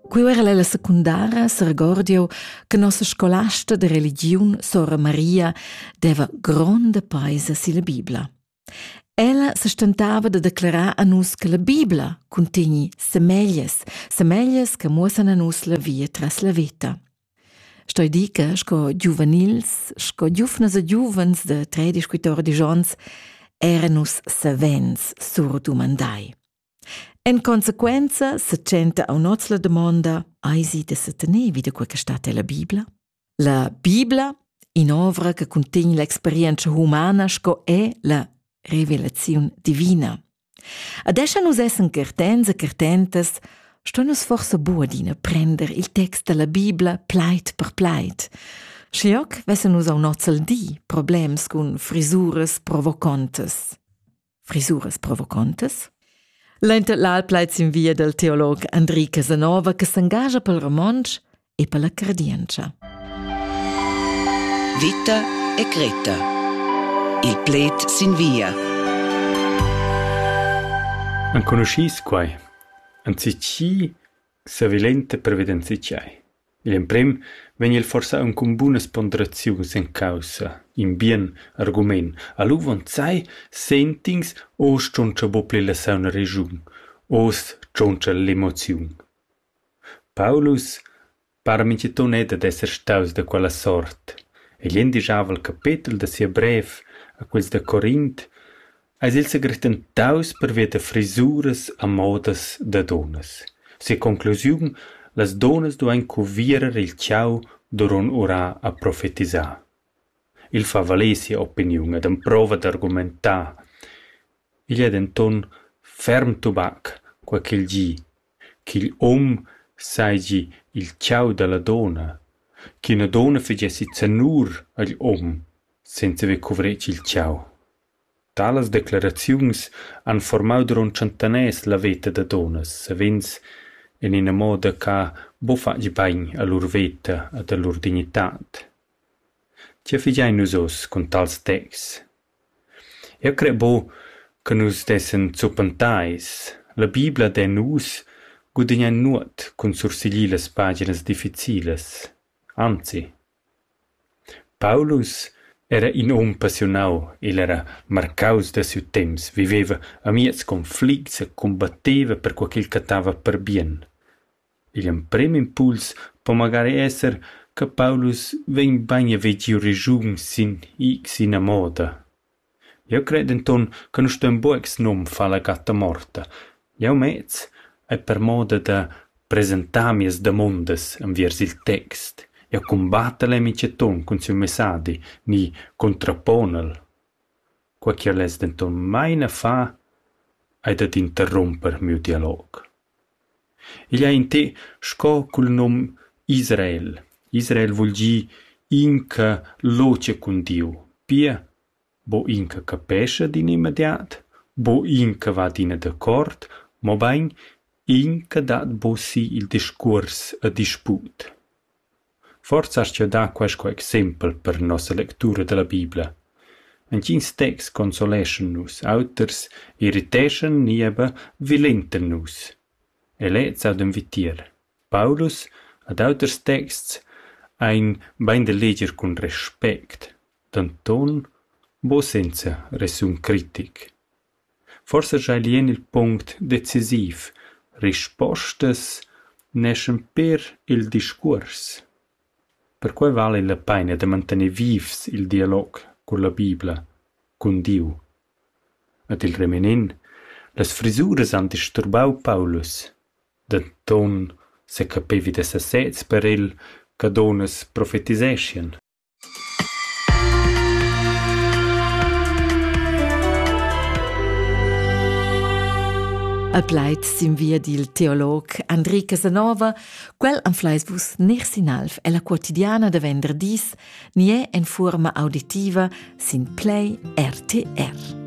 Quei era la secundara seregordio che nossa scolasta de religiun Sora Maria deva gronda paisa silla Bibla. Ella se stentava de declarar a nus che la Bibla contegni semeglies, semeglies che muossan a nus la via tras la veta. Stoi di che, sco giuvenils, sco giufnas e giuvens de tre discuitori digions, era nus savens surdumandai. En consequenza se tschenta aun'oz la damonda: Eisi da setener vi da quei che stat ella Bibla? La Bibla, in'ovra che cuntegn l'experienza humana sco è la revelaziun divina. Adesso nus essen certens e certentas, sto nus forse bu adina prender il text della Bibla plait per plait. Schlioc vessen nus aun'oz al di problems cun frisuras provocontas. frisuras provocontas? L'inter l'al plaid sin via del teolog Andri Casanova che s'engagia pel romontsch e per la credientscha. Vita e Greta. Il pled sin via. Enconoscis quai? Anzi chi savilente previdenzi c'hai? Gl'emprem vegn el forsa aunc cun bunas ponderaziuns en caussa, in bien argument, al uvonzai sent'ins oz tschontscha buca la sauna regiun, oz tschontscha l'emoziun. Paulus para mintgaton era dad esser staus da quella sort. Egl endischava il capetel da sia brev a quels da Corint eis il segrestentaus pervia da frisuras a modas da dunnas. Sia conclusiun: las dunnas duein cuvierer il tgau duront urar a profetisar. Il fa valer sia opiniun ed emprova d'argumentar. Igl ei denton ferm tubac, quei ch'il gi, ch'igl um seigi il tgau dalla dunna, ch'ina dunna fagessi zanur agl um senza haver cuvretg il tgau. Talas decleraziuns han formau duront tschentaners la veta da dunnas, savens en ina moda che buca fatg bein a lur veta ed a lur dignitad. Tgei figein nus oz cun tals texts? Eu cret buc che nus dessan zuppentais. La Bibla dè nus gudignar nuot cun sursiglir las paginas difficilas. Anzi. Paulus era in um passiunau, igl era marcaus da siu temps, viveva amiez conflicts e combatteva perquei ch'el cattava per bien. Igl emprem impuls po magari esser che Paulus vegn bein a vegir regiun sin ina moda. Jeu cred denton che nus ston buca senum far la gatta morta. Jeu mez ei per moda da presentar mias damondas enviers il text. Jeu cumbattel e mitschaton cun siu messadi ni contraponel. Quei che less denton mai na far ei dad interrumper miu dialog. Igl ei in té sco cul num Israel. Israel vul gir inca lotga cun Diu. Pia, bo inca capescha d'in immediat, bo inca va adina d'accord, mobein inca dat bo si il discuors e disput. Forsa aschia dat quei sco exempel per nossa lectura dalla Bibla. Entgins texts consoleschan nus, auters irriteschan ni era vilentan nus. E lez audan vitier. Paulus ad auters texts ein bein da leger cun respect, denton buca senza resun critic. Forsa schai lien il punct decisiv: rispostas neschan pér il discuors. Perquei vala la peina da mantener vivs il dialog culla Bibla, cun Diu. Ed il reminent: las frisuras han disturbau Paulus. Denton secapevi da sesez per el che dunnas profetiseschien. A plaid sin via dil teolog Andri Casanova, quel anfleis vus ner sin alv ella quotidiana da venderdis, nie en fuorma auditiva sin Play RTR.